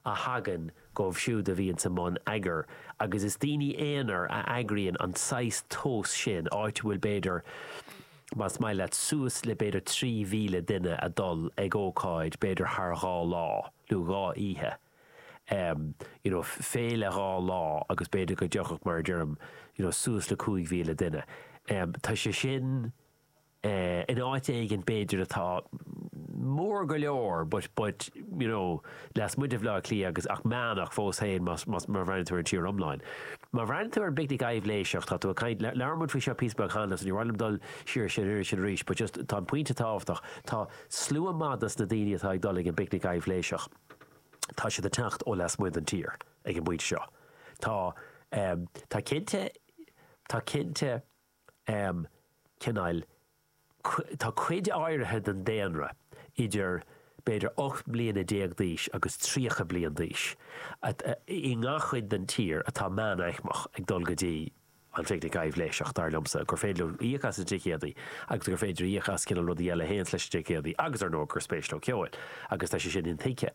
a thagann dóibh siúd a bhíonns i mbun eagair, agus is daoine aonair a eagraíonn an saghas tionóil sin, áit a bhfuil b'fhéidir, más maith leat, suas le b'fhéidir 3,000 duine a dul ag ócáid b'fhéidir thar dhá lá, nó dhá oíche, you know, féile dhá lá agus b'fhéidir go dtiocfadh, mar a deirim, you know, suas le 5,000 duine. Tá sé sin. in áit éigin b'fhéidir atá mór go leor but, but, you know, lasmuigh de Bhleá Cliath agus, ach meánaicmeach fós féin más, más, má bhreathnaíonn tú ar an tír iomlán. Má bhreathnaíonn tú ar an bPicnic Aibhléiseach, tá tú ag caint, labhair muid faoi seo píosa beag cheana so ní mhaith liom dul siar uirthi sin arís but just tá an pointe tábhachtach, tá slua maith dos na daoine atá ag dul ag an bPicnic Aibhléiseach, tá siad ag teacht ó lasmuigh den tír ag an bpointe seo. Tá, tá cinnte, tá cinnte. um cineáil, tá cuid áirithe den daonra idir b'fhéidir 18 mbliana d'aois agus 30 bliain d'aois i ngach chuid den tír atá meánaicmeach ag dul go dtí an phicnic aibhléiseach, dar liomsa, gur féidir íoc as na ticéadaí agus gur féidir íoc as cineál rudaí eile a théanns leis na ticéadaí agus, ar ndóigh, gur spéis leo ceol agus tá sé sin intuigthe.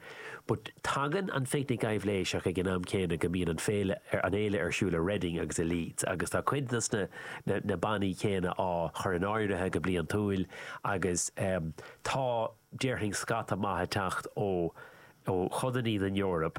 But tagann an Phicnic Aibhléiseach ag an am céanna go mbíonn féile eile ar siúl i Reading agus i Leeds agus tá cuid dos na bannaí céanna á chur in áirithe go bliantúil agus tá, déarfainn, scata maith ag teacht ó chodannaí den Eoraip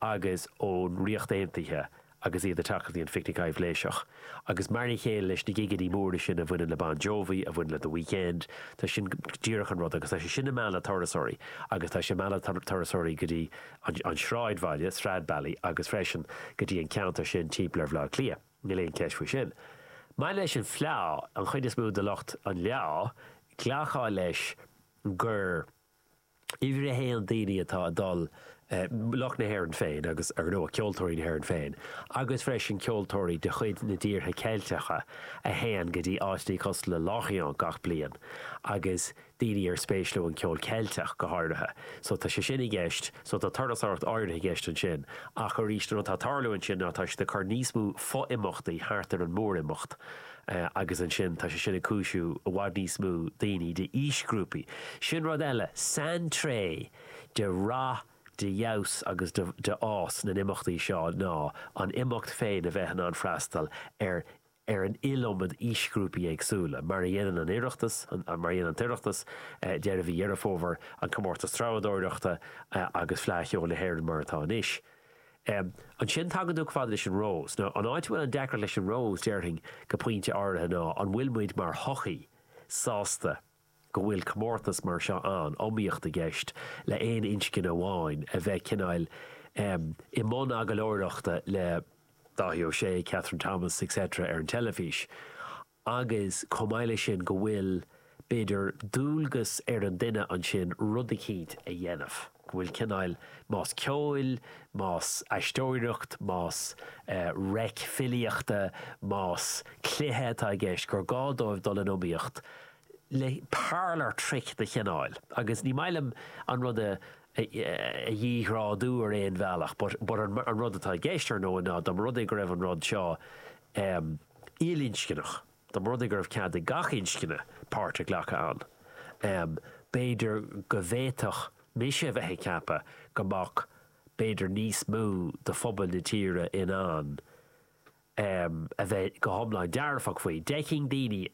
agus ón Ríocht Aontaithe agus iad ag teacht go dtí an Phicnic Aibhléiseach. Agus mar an chéile leis na gigeannaí móra sin a bhaineann le Bon Jovi, a bhaineann le The Weeknd, tá sin díreach an rud agus tá sé sin ag mealladh turasóirí agus tá sé ag mealladh turasóirí go dtí an sráidbhaile, Stradbally, agus freisin go dtí an ceantar sin timpeall ar Bhaile Átha Cliath, níl aon cheist faoi sin. Maidir leis an bhfleá, an chuid is mó de lucht an fhleá, ghlacfá leis gur. Uimhir a haon, daoine atá ag dul, lucht na hÉireann féin agus, ar ndóigh, ceoltóirí na hÉireann féin, agus freisin ceoltóirí de chuid na dtíortha Ceilteacha a théann go dtí áiteachaí cosúil le Lorient gach bliain agus daoine ar spéis leo an ceol Ceilteach go háirithe. So tá sé sin i gceist, so tá turasóireacht áirithe i gceist ansin ach arís an rud atá ag tarlú ansin ná tá siad ag cur níos mó fo-imeachtaí thart ar an mór-imeacht, agus ansin tá sé sin ag cúisiú i bhfad níos mó daoine d'aoisghrúpaí. Sin rud eile, saintréith de rath, de fheabhas agus de de fhás na n-imeachtaí seo ná an imeacht féin a bheith in ann a freastal ar ar an iliomad aoisghrúpaí éagsúla, mar a dhéanann an Oireachtas, mar a dhéanann an tOireachtas, deireadh mhí Dheireadh Fómhair, an Comórtas Treabhadóireachta agus Fleadh Cheoil na hÉireann mar atá anois. Um ansin tagann tú chomh fada leis an Rós. Nó an áit a bhfuil an deacracht leis an Rós, déarfainn, go pointe áirithe ná, an bhfuil muid mar shochaí sásta go bhfuil comórtas mar seo ann, iomaíocht i gceist le aon inscne amháin a bheith cineáil em i mbun agallóireachta le Dáithí Ó Sé, Kathryn Thomas, etc. ar an teilifís. agus chomh maith leis sin go bhfuil, b'fhéidir, dualgas ar an duine ansin rud eicínt a dhéanamh, go bhfuil cineál, más ceoil, más aisteoireacht, más reic filíochta, más cluiche atá i gceist, gur gá dóibh dul in iomaíocht le parlour trick de chineál, agus ní maith liom an rud a dhíghrádú ar aon bhealach but an rud atá i gceist, ar ndóigh, ná dá mba rud é go raibh an rud seo. ilinscneach. Da mba rud é go raibh cead ag gach inscne páirt a ghlacadh ann, b'fhéidir go bhféadfadh mise a bheith ag ceapadh go mbeadh b'fhéidir níos mó de phobail na tíre in ann a bheith go hiomlán dearfach faoi. D'fheicfeadh daoine.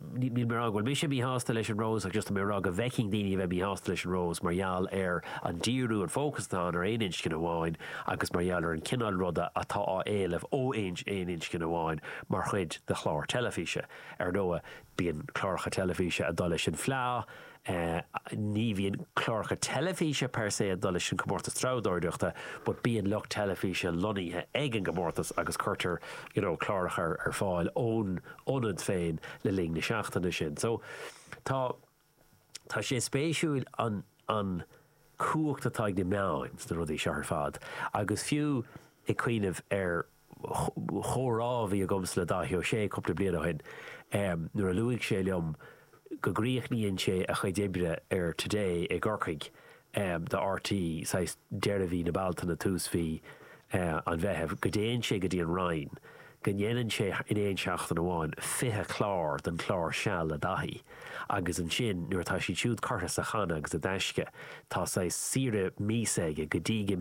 níl mé ag rá go bhfuil mise míshásta leis an Rose ach just tá mé ag rá go bhfeicfeadh daoine a bheith míshásta leis an Rose mar gheall ar an díriú, an fócas atá ann ar aon inscne amháin agus mar gheall ar an chineál ruda atá á éileamh ó aon inscne amháin mar chuid de chlár teilifíse. Ar ndóigh, bíonn cláracha teilifíse ag dul leis an bhfleá, Ní bhíonn cláracha teilifíse per se ag dul leis an gcomórtas treabhdóireachta but bíonn lucht teilifíse lonnaithe ag an gcomórtas agus cuirtear you know cláracha ar fáil ón ionad féin le linn na seachtaine sin. So tá tá sé spéisiúil an an chumhacht atá ag na meáin sna rudaí seo ar fad agus fiú ag cuimhneamh ar chomhrá a bhí agamsa le Dáithí Ó Sé cúpla bliain ó shin nuair a luaigh sé liom go gcríochnaíonn sé a chuid oibre ar Today i gCorcaigh do RTÉ, saghas deireadh mhí na Bealtaine, tús mhí an Mheithimh, go dtéann sé go dtí an Rinn, go ndéanann sé in aon seachtain amháin 20 clár den chlár Seal le Dáithí agus ansin nuair atá siad siúd curtha sa channa agus i dtaisce tá saghas saoire míosa aige go dtí go